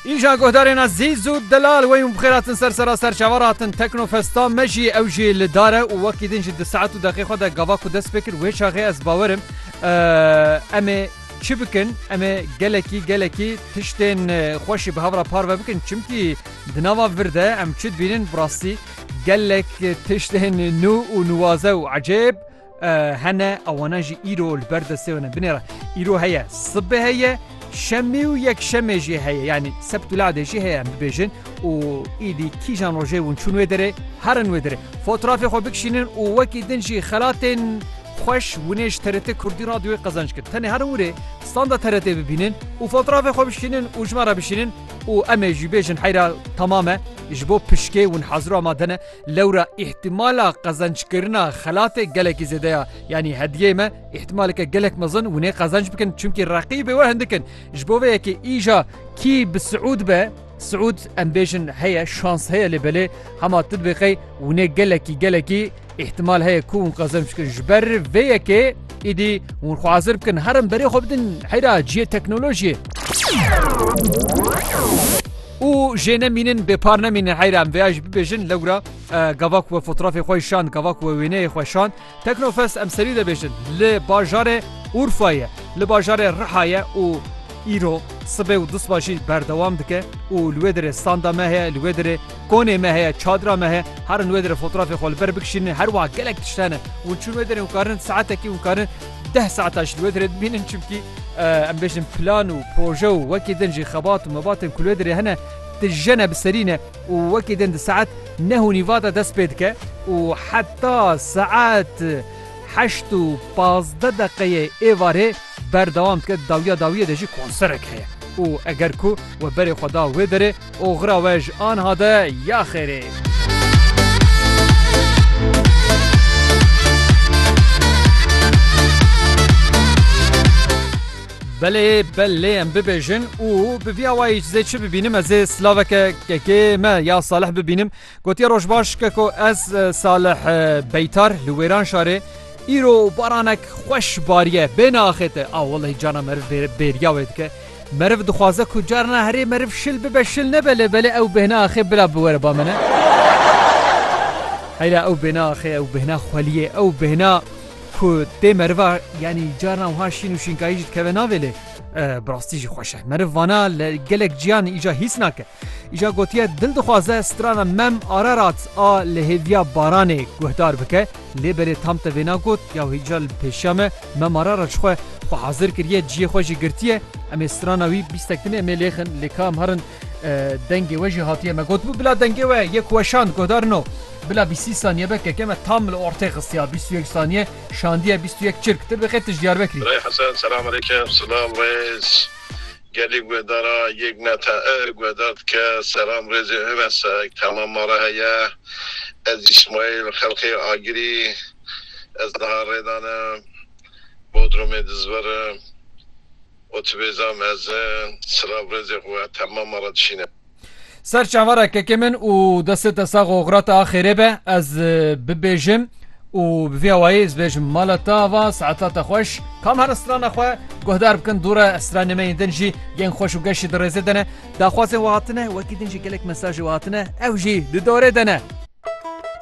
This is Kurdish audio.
Îja guhdarên Ezîz û Delal wey û bi xêr hatin ser sera serçavan re hatin Teknofesta me jî ew jî li dar e û wekî din jî di saet û deqê xwe de gava ku dest pê kir wê çaxê ez bawer im em ê çi bikin em ê gelekî gelekî tiştên xwe jî bi hev re parve bikin çimkî di nava vir de em çi dibînin bi rastî gelek tiştên nû û nuwaze û ecêb Hene ewana jî îro li ber destê ne binêre. Îro heye sibê heye şemî û yek şemê jî heye yanî sept û ladê jî heye bibêjin û îdî kîjan rojê hûn çûn wê derê herin wê derê. Fotrafê xwe bikişînin û wekî din jî xelatên xweş winêj TRT Kurdî radyoyê qezenç kir. Tenê herin wurê standa TRT bibînin û fotrafê xwe bişînin û ji me re bişînin û em ê jî bêjin heyra temam e ji bo pişkê hûn hezir û amade ne. Lewra îhtimala qezenckirina xelatê gelekî zêde ya. Yanî hediyeyê me îhtimaleke gelek mezin winê qezenc bikin çimkî reqîbê we hindik in. Ji bo vê yekê îja kî bi Siûd be, Siûd em bêjin heye şans heye lê belê hema tu dibê qey winê gelekî gelekî îhtimal heye ku hûn qezenc bikin. Ji ber vê yekê îdî hûn xwe hazir bikin herin berê xwe bidin heyra cihê teknolojiyê. Û jê ne mînin bê par ne mînin heyra em vêya jî bibêjin lewra gava ku we fotrafê xwe şand gava ku we wêneyê xwe şand Teknofest em serî debêjin li bajarê Urfa ye li bajarê Riha ye û îro sibê û dusba jî berdewam dike û li wê derê standa me heye li wê derê konê me heye çadira me heye herin wê derê fotrafê xwe li ber bikişînin her wiha gelek tişt hene hûn çûn wê derê hûn karin saetekî hûn karin Deh saeta ji li wê derê dimînin çimkî em bêjin plan û proje û wekî din jî xebat û mebatên ku li wê derê hene dijene bi serî ne û wekî din di saet neh û nîva de dest pê dike û heta saet heşt û pazdeh deqeyê êvarê berdewam dike dawiya dawiyê de jî konserek heye û eger ku we berê xwe da wê derê Oxira we ji anha de ya xêrê. Belê bel lê em bibêjin û bi vîya wayî ji zê çi bibînim ez ê silaveke kekê me ya Salih bibînim Gotiye Rojbaş ke ku ez Salih Beytar li Wêran şarê îro baranek xweş bariye bê naaxête a welay cana meriv bêriya wê dike. Meriv dixwaze ku carna herê meriv şil bibe şil nebe lê belê ew bêhna axê bila biwere ba min Heyla ew bêna axê ew bêhna xweliyê ew bêhna ku tê meriva yanî carna wiha şîn û şînkayî jî dikeve navê lê e, bi rastî jî xweş e. Meriv vana li gelek ciyan îca hîs nake. Îja gotiye dil dixwaze strana Mem Ararat a li hêviya Baranê guhdar bike lê belê tam te vêna got ya wî îca li pêşiya me Mem Ararat ji xwe xwe hazir kiriye ciyê xwe jî girtiye em ê strana wî bîstek din ê em ê lêxin lê ka em herin dengê we jî hatiye me gotibû bila dengê we yê ku we şand guhdar no bila bîsî saniye veke ke me tam li ortê xistiya bîst û yek saniye şandiye bîst û yek çirk tir veke tij Diyarbekirî. Birayê Hesen selam aleyküm. Silav rêz. Gelê guedara yek meta e guedar dike. Selam rêzê hune sek hema ma re heye. Ez İsmail xelqê Agirî ez niha rêdan e Bodrumê dizverim. Otubêza mezin silav rêzê xwe hema ma re dişîne. Ser çavara kekê min û destê te sax û xira te a xêrê be ez bibêjim û bi vî awayî ez bêjim mala te ava saeta te xweş kam here strana xwe guhdar bikin dû re stranê me yên din jî yên xweş û geşî di rêzê de ne daxwazên we hatine wekî din jî gelek mesajê we hatine ew jî di dorê de ne.